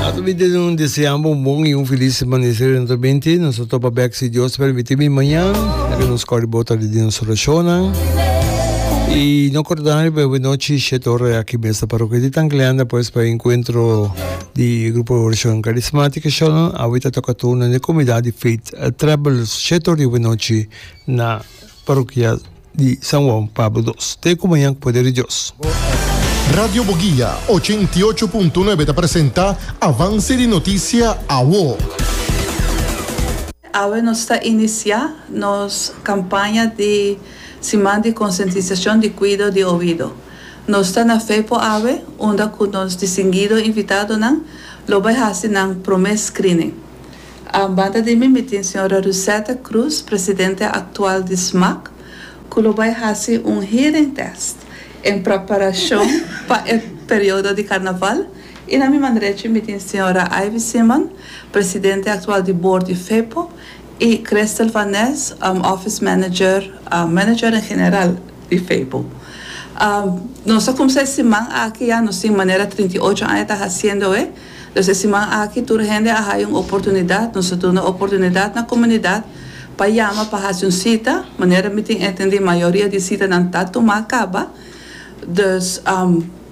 Ato mi ta un desean bo un bon y un feliz semana di Sera dentro binti. Nos ta topa bek si Dios ta permiti mi mañan. Nan ke nos kore bo ta di den nos oracionnan. Y no cordan riba hopi nochi shet ora aki mes na Parroquia di Tangleanda pues pa e encuentro di Grupo di Oracion Carismatica Shalom. Awe ta toca turno di Comunidad di Faith Travelers shet ora di hopi nochi na Parokia di San Juan Pablo dos. Te ku mañan ku poder di Dios. Radio Boguia ochenta i ocho punto nuebe ta presenta Avance di Noticia Awo. Awe nos ta inicia nos campaña di siman di concientizacion di cuido di oido. Nos ta na fe por awe unda cu nos distinguido invitadonan lo bay haci nan prome screening. A banda di mi, mi tin señora Rusette Cruz, presidente actual di SMAC, cu lo bay haci un hearing test en preparacion pa e periodo di Carnaval y na mi man derecho mi tin señora Ivy Simon, presidente actual di board di FEPO y Christel van Nes, office manager, manager en general di FEPO. Nos a cumsa e siman aki ya, nos tin manera trinta y ocho aña ta haciendoe. Los e siman aki tur hende a haya un oportunidat, nos a duna oportunidat na comunidad pa yama pa haci un cita, manera mi tin entendi mayoria di citanan ta tuma caba, dus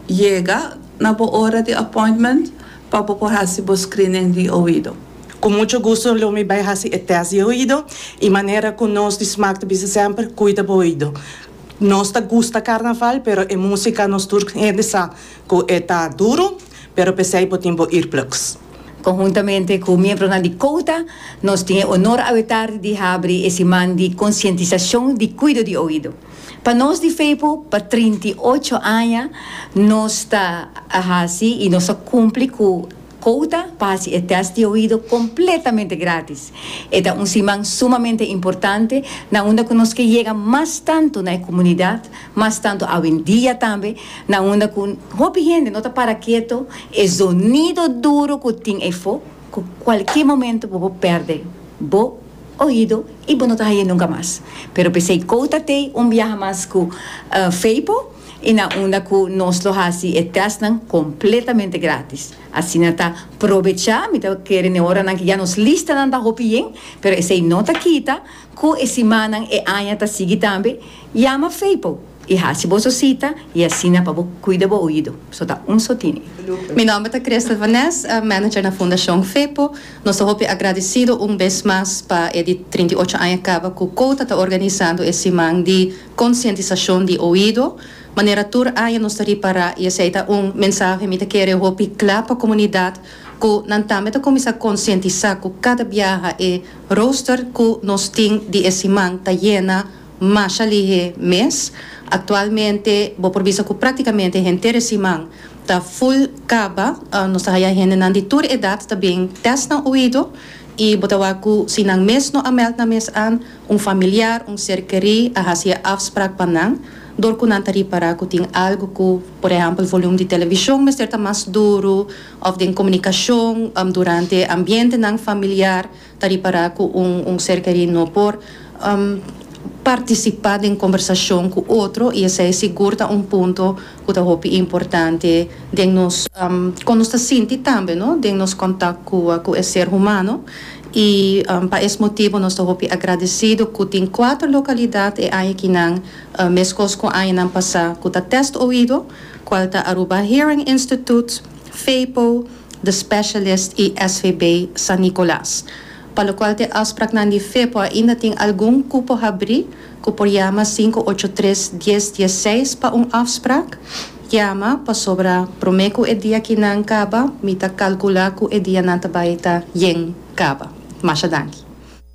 yega na bo ora di appointment pa bo por haci bo screening di oido. Cu mucho gusto lo mi bay haci e test di oido y manera cu nos di smaak ta bisa semper, cuida bo oido. Nos ta gusta carnaval pero e musica nos tur hende sa cu e ta duro, Pero p'esei bo tin bo earplugs. Konhuntamente ku miembronan di Kouta, nos tin e onor awetardi di habri e siman di konsientisashon di kuido di oido. Pa nos di Feipo, pa trinta i ocho aña nos ta a hasi i nos ta kumpli ku Kouta pa hasi e tèst di oido kompletamente gratis. E ta un siman sumamente importante na unda ku nos ke yega mas tantu na e komunidat, mas tantu awendia tambe Na unda ku hopi hende no ta para keto, e zonido duru ku tin efo ku kualke momento bo por pèrdè bo oido i bo no ta hañ'é nunka mas. Pero p'esei kouta t'ei un biaha mas ku Feipo i na unda ku nos lo hasi e tèstnan kompletamente gratis. Asina ta probechá, mi ta kere n'e oranan ku ya nos lista nan ta hopi yen, pero esei no ta kita ku e simannan, e aña ta sigui tambe, yama Feipo. I hasi boso sita i asina pa bo kuida bo oido. So ta un so tini. Mi nòmber ta Christel van Nes, manager na Fundashon Fepo. Nos ta hopi agradisido un bes mas pa e di trinta i ocho aña kaba ku Kouta ta organisando e siman di konsientisashon di oido. Manera tur aña nos ta ripará i esei ta un mensahe mi ta kere hopi kla pa komunidat ku nan tambe ta kuminsá konsientisá ku kada biaha e roster ku nos tin di e siman ta yena Masha Lihe mes. Actualmente bo por bisa cu practicamente henter e siman ta full caba. Nos ta haya hendenan di tur edad ta bin test nan oido y bo ta wak cu si nan mes no a meld nan mes an, un familiar, un ser keri a haci e afspraak pa nan door cu nan ta ripara cu tin algo cu, por ehempel volume di television mester ta mas duru of den comunicacion durante ambientenan familiar Ta ripará ku un un ser kerí no por partisipá den kombersashon ku otro i esei sigur ta un punto ku ta hopi importante den nos kon nos ta sinti tambe no den nos kontak ku ku e ser humano i pa es motibu nos ta hopi agradesido ku tin kuater lokalidat e aña kinan meskos ku añanan pasá ku ta Test Oido kual ta Aruba Hearing Instituut, FEIPO, The Specialist i SVB San Nicolas, pa lokual t'e afspraknan di Fepo ainda tin algun ku por habrí, ku por yama sinku ocho tres dies dies seis pa un afsprak. Yama, pasobra promé ku e dia kinan kaba, mi ta kalkulá ku e dianan ta bai ta yen kaba. Masha danki.